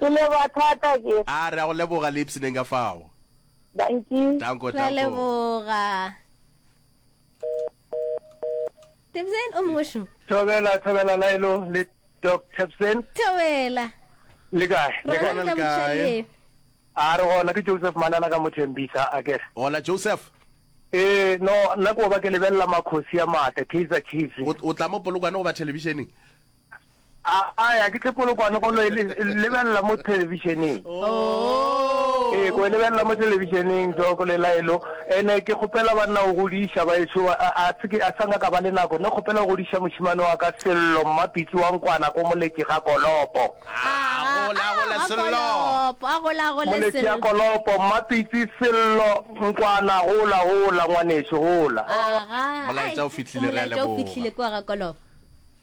Ke leboga thata ke. A re a go leboga le ipseneng ka fao. Danki. Tanko, Ra tanko. leboga. Tebsen o mongwe šo. Thobela, Thobela Laelo le Doc Tebsen. Thobela. Le kae? Re Re gona le kae? kae? A re gona ke Joseph Manana ka Mothembisa a ke re. Hola Joseph. Ee, no nna ko ba ke lebelela makhosi a maatla, Kaizer Chiefs. O o tla mo Polokwane go ba thelebišeneng? A ya ke tle polokwane go lo e lebelela mo televisioneng. Oh. Ee, go e lebelela mo televisioneng jo go lela elo. Ene ke kgopela ba nna o godiša ba eso a se ke a sanga ka ba le nako. Ne kgopela o godiša moshimane wa ka Sello Mmapitsi wa Nkwana ko Moletši ga Kolopo. Ah, gola gola ah, Sello. A gola gola Sello. Moletši ya Kolopo, Mmapitsi Sello Nkwana gola gola ngwaneso gola. Aha. Molaetsa o fitlhile re a leboga. Molaetsa o fitlhile kwa ga Kolopo.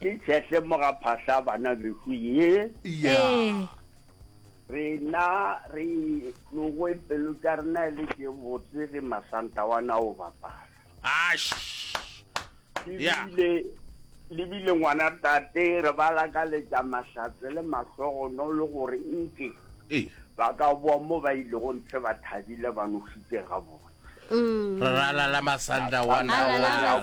Ke tšhehle moga phahla bana beku ye. Yeah. Rena re logo pelo tša rena le ke botse ge masanta wa na o bapala. Ash. Yeah. Lebile lebile ngwana tate re ba lakaletša mahlatse le mahlogono le gore nke. Eh. Ba ka boa mo ba ilego ntle ba thabile ba nošitše gabotse. Mm. re ralala masanda wa nawana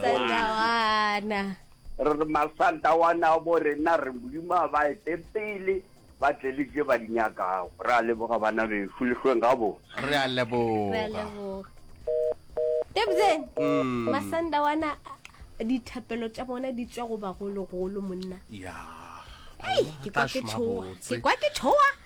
re re masanda wa na bo rena re modimo a ba ete pele ba tle le je ba di nyakago re a leboga bana befu lehlweng ga bo re a leboga tebzen mm. masanda wana dithapelo tša bona di tswa go bagologolo monna ke kwa ke tshoa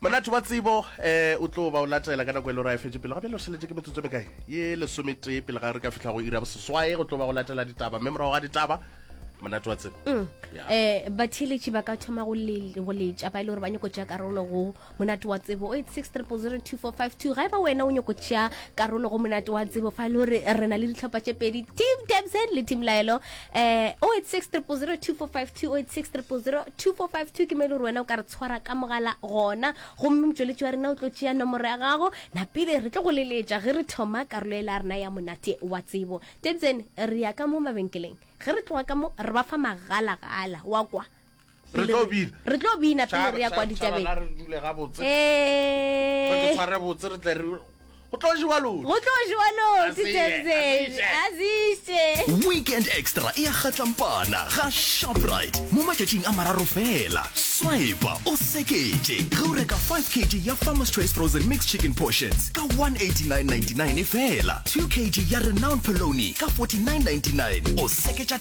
Monate wa tsebo e o tlo ba o latela ka nako e le gore a e fetše pele ga bjale o šeletše ke metsotso e mekae? Ye lesometee pele ga re ka fihla go iri ya boseswae go tlo ba go latela ditaba mme morago ga ditaba monate wa tsebo um batheeletši ba ka thoma go letša ba e le gore ba nyako tšea karolo go monate wa tsebo o 8600245 ga e ba wena o nyako tšea karolo go monate wa tsebo fa e le gore re na le ditlhopha tše pedi team tabsen le team laelo eh 0860002452 ke mo e le gore wena o ka re tshwara ka mogala gona gomme motšweletši wa rena o tlo tšea nomoro ya gago napele re tlo go leletša ge re thoma karolo e la rena ya monate wa tsebo tetsene re ya ka mo mabenkeleng ge re tloga ka mo re ba fa magalagala wa kwa re tlo bina re tlo bina pele re ya kwa ditabeng re dule ga botse re tshware botse re tle re go tlo jewa lodi go tlo jewa lodi tsetse azise weekend extra e ya gatlampana ga shoprite mo matšatšing a mararo fela swipa o sekete ge o reka 5 kg ya farmers choice frozen mixed chicken portions ka 189.99 e fela 2 kg ya renowned poloni ka 49.99 o seketša